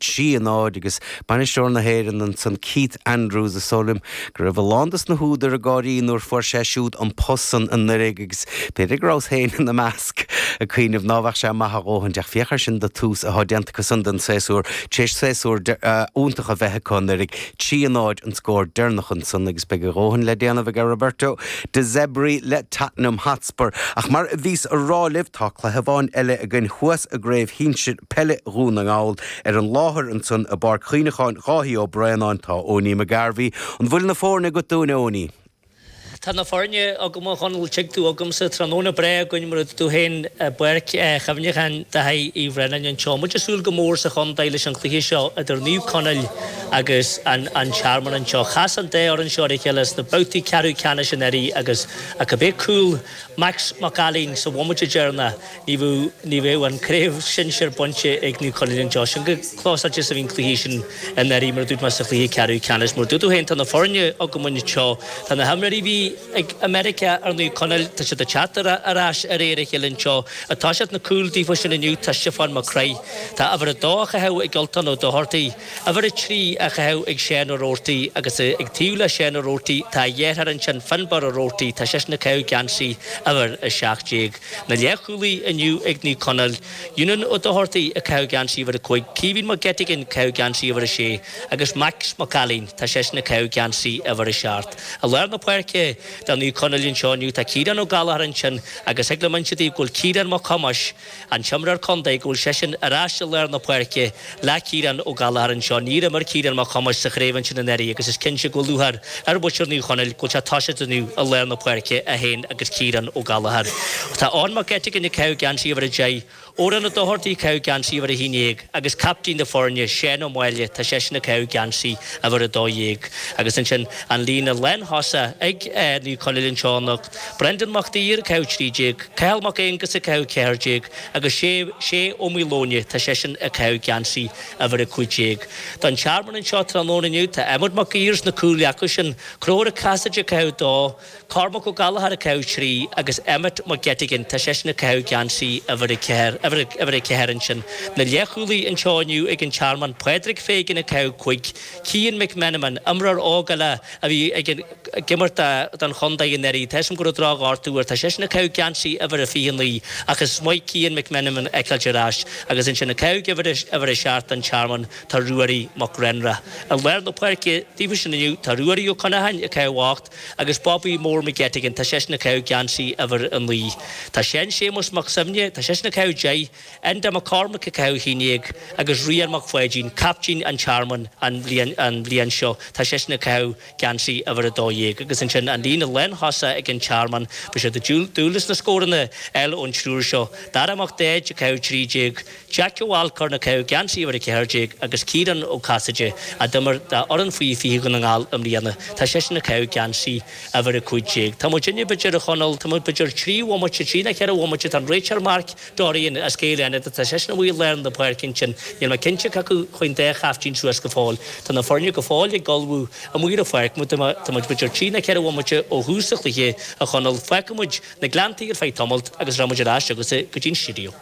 Trí náid, agus Bainisteoir na hÉireann ansan, Keith Andrews, is dóigh liom go raibh a lán dos na húdair ag gáirí nuair a fuair sé siúd an post san anuiridh, agus b'fhéidir go rabhas féin ina measc ag cuimhneamh ná bheadh sé maith a dhóthain, ach féach air sin do thús athá déanta acu san don saosúr, tar éis saosúr iontach a bheith acu anuiridh, trí náid an scór deireanach ansan, agus beidh a dhóthain le déanamh aige Roberto De Zebri le Tottenham Hotspur. Hotspur. Ach mar a bhíos a rá libh, tá cluiche amháin eile againn thuas i gcraobh shinsir peile Dhún na nGall. Ar an láthair ansan i bPáirc Chuimhneacháin Dháithí Ó Braonáin, tá Eoiní McGarvey. An bhfuil na foirne agat dúinn, a Eoiní? Tá na foirne agam, a Dhomhnaill, tig tú agamsa. Tráthnóna breá againn mar a dúirt tú féin i bPáirc Chuimhneacháin Dháithí Uí Bhraonáin anseo. Muid ag súil go mór sa chontae leis an chluiche seo idir Naomh Conaill agus An Tearmann anseo. Chas an dá fhoireann seo ar a chéile sna babhtaí ceathrú ceannais anuraidh agus, Ach ab é cúl Max Mac Ailín sa bhomaite deireanach ní bheadh an Craobh Sinsir bainte ag Naomh Conaill anseo. Sin chomh clósáilte is a bhí an cluiche sin i ndáiríre mar a dúirt mé sa chluiche ceathrú ceannais. Mar a dúirt tú féin tá na foirne agam anseo. Tá na himreoirí a bhí ag i Meiriceá ar Naomh Conaill tá siad ag teacht ar ais de réir a chéile anseo. Atá sna cúil daofa sin inniu tá Stiofán Mac Craith. Tá uimhir a dó á chaitheamh ag Ultán Ó Dochartaigh. Uimhir a trí á chaitheamh ag Seán Ó Robhartaigh agus ag taobh le Seán Ó Robhartaigh tá a dheartháir ansin Finbar Ó Robhartaigh tá seisean ag caitheamh geansaí uimhir a seacht déag. Na leathchúlaí inniu ag Naomh Conaill. Eunan Ó Dochartaigh ag caitheamh geansaí uimhir a cúig, Caoimhín Mac Eiteagáin ag caitheamh geansaí uimhir a sé agus Max Mac Ailín tá seisean ag caitheamh geansaí uimhir a seacht. I lár na páirce do Naomh Conaill anseo inniu tá Ciarán Ó Gallchóir ansin agus thig liom inse daoibh go bhfuil Ciarán Mac Thomáis An t-imreoir contae go bhfuil seisean ar ais i lár na páirce le Ciarán Ó Gallchóir anseo. Níor imir Ciarán Mac Thomáis sa chraobh ansin anuraidh agus is cinnte go bhfuil lúcháir ar mhuintir Naomh Conaill go bhfuil sé tosaithe inniu i lár na páirce, é féin agus Ciarán Ó Gallchóir. Tá Eoin Mac Eiteagáin ag caitheamh geansaí uimhir a deich, Odhrán Ó Dochartaigh ag caitheamh geansaí uimhir a haon dhéag agus captaen na foirne, Seán Ó Máille, tá seisean ag caitheamh geansaí uimhir a dó dhéag. Agus ansin an líne lántosach ag Naomh Conaill anseo ná. Brendan Mac Duibhir, ag caitheamh 13, Cathal Mac Aonghusa, ag caitheamh 14, agus Sé, Sé Ó Maoileoin, tá seisean ag caitheamh geansaí uimhir a cúig déag. Don Tearmann anseo tráthnóna inniu. Tá Emmet Mac Uidhir sna cúil acu sin, Conchúr Ó Casaide, ag caitheamh dó, Cormac Ó Gallchóir ag caitheamh trí, agus Emmet Mac Eiteagáin, tá seisean ag caitheamh geansaí uimhir a ceathair ansin. Na leath-chúlaí anseo inniu ag an Tearmann, Pádraig Fagan ag caitheamh cúig, Cian McMenamin, imreoir óg eile a bhí ag imirt don chontae anuraidh, tá 'fhios agam go raibh drochghortú air, tá seisean ag caitheamh geansaí uimhir a 29 ach is maith Cian McMenamin a fheiceáilt ar ais agus ansin ag caitheamh uimhir a 7 don Tearmann tá Ruairí Mac Grenra. I lár na páirce daofa sin inniu tá Ruairí Ó Connacháin ag caitheamh 8 agus Bobby Mór McGettigan, tá seisean ag caitheamh geansaí uimhir a 9. Tá Seán Séamus Mac Suibhne, tá seisean ag caitheamh 10. Enda Mac Cormaic ag caitheamh Shí Néill agus Ryan Mac Pháidín, caiptín an Tearmainn an bhliain seo, tá seisean ag caitheamh geansaí uimhir 12. Agus ansin an líne lántosach ag an Tearmann, beidh siad ag dúil leis na scóranna uilig ón triúr seo, Dara Mac Daid ag caitheamh 13, Jeaic Alcorn ag caitheamh geansaí uimhir 14 agus Ciarán Ó Casaide a d'imir d'fhoireann faoi 20 Dhún na nGall i mbliana, tá seisean ag caitheamh geansaí uimhir 15. Tá muid inne, b'fheidir, a Chonall, tá muid b'fheidir trí bhomaite, trí nó ceithre bhomaite, tá an réiteoir Marc, Dorian, as Gaeil Fhánada, tá seisean amuigh i lár na páirce ansin. Níl mé cinnte cé acu a chuaigh an dá chaiftín suas go fóill. Tá na foirne go fóill ag ullmhú amuigh ar an pháirc mar tá muid idir trí nó ceithre bhomaite ó thús an chluiche, a Chonaill. Fágfaidh muid na Gleanntaí ar feadh tamalt agus rachaidh muid ar ais agus go dtí an stiúideo.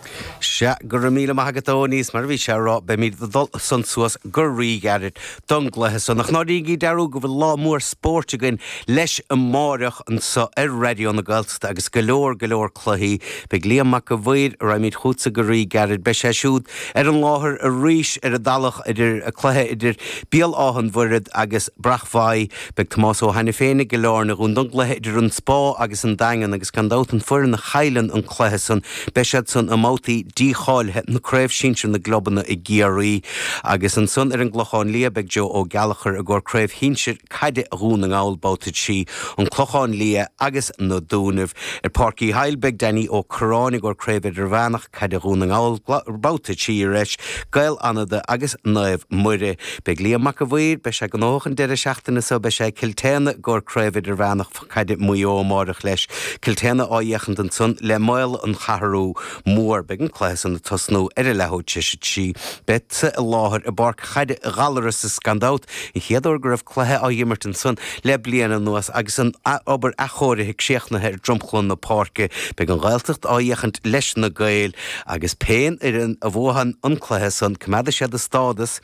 Sea, go raibh míle maith agat a Aonghuis, mar a bhí sé a rá, beimid ag dul ansan suas go ríghairid. don gcluiche so. Nach ndéanaigí dearúd go bhfuil lá mór spóirt againn leis amáireach anso ar Raidió na Gaeltachta agus go leor, go leor cluichí. Beidh Liam Mac a' Mhaoir a rabhamar chuige san go ríghairid. Beidh sé siúd ar an láthair arís ar an Tulach i gcomhair an chluiche idir Béal an Mhuirthead agus Bréachmhaigh Beidh Tomás Ó hAiniféin i gCill Airne dúinn don gcluiche idir an Spá agus an Daingean agus gan dabht an fhoireann a chailleann an cluiche san beidh siad san i mbabhtaí dícháilithe na Craobh Sinsir na gclubanna i gCiarraí agus ansan ar an gClochán Liath beidh Joe Ó Gallachóir i gcomhair Craobh Shinsir Caide Dhún na nGall Babhta 3 an Clochán Liath agus Na Dúnaibh. Ar Pháirc Uí Shiadhail beidh Danny Ó Curráin i gcomhair Craobh Idirmheánach. Caide Dhún na nGall babhta 3 arís, Gaeil Fhánada agus Naomh Muire. Beidh Liam Mac a' Mhaoir, beidh sé gnóthach an deireadh seachtaine so, beidh sé i gCill tSéadhna i gcomhair Craobh Idirmheánach Caide Mhaigh Eo amáireach leis. Cill tSéadhna á fhéachaint ansan le Maol an Cheathrú Mhór. Beidh an cluiche san ag tosnú ar a leathuair tar éis a trí. Bead-sa i láthair i bPáirc Chaide Ghallarais is gan dabht an chéad uair go raibh. cluiche á imirt ansan le bliain anuas agus an obair athchóirithe críochnaithe ar dhromchla na páirce. Beidh an Ghaeltacht á fhéachaint leis na Gaeil agus pé foireann a bhuafaidh an cluiche san, coimeádfaidh siad a stádas,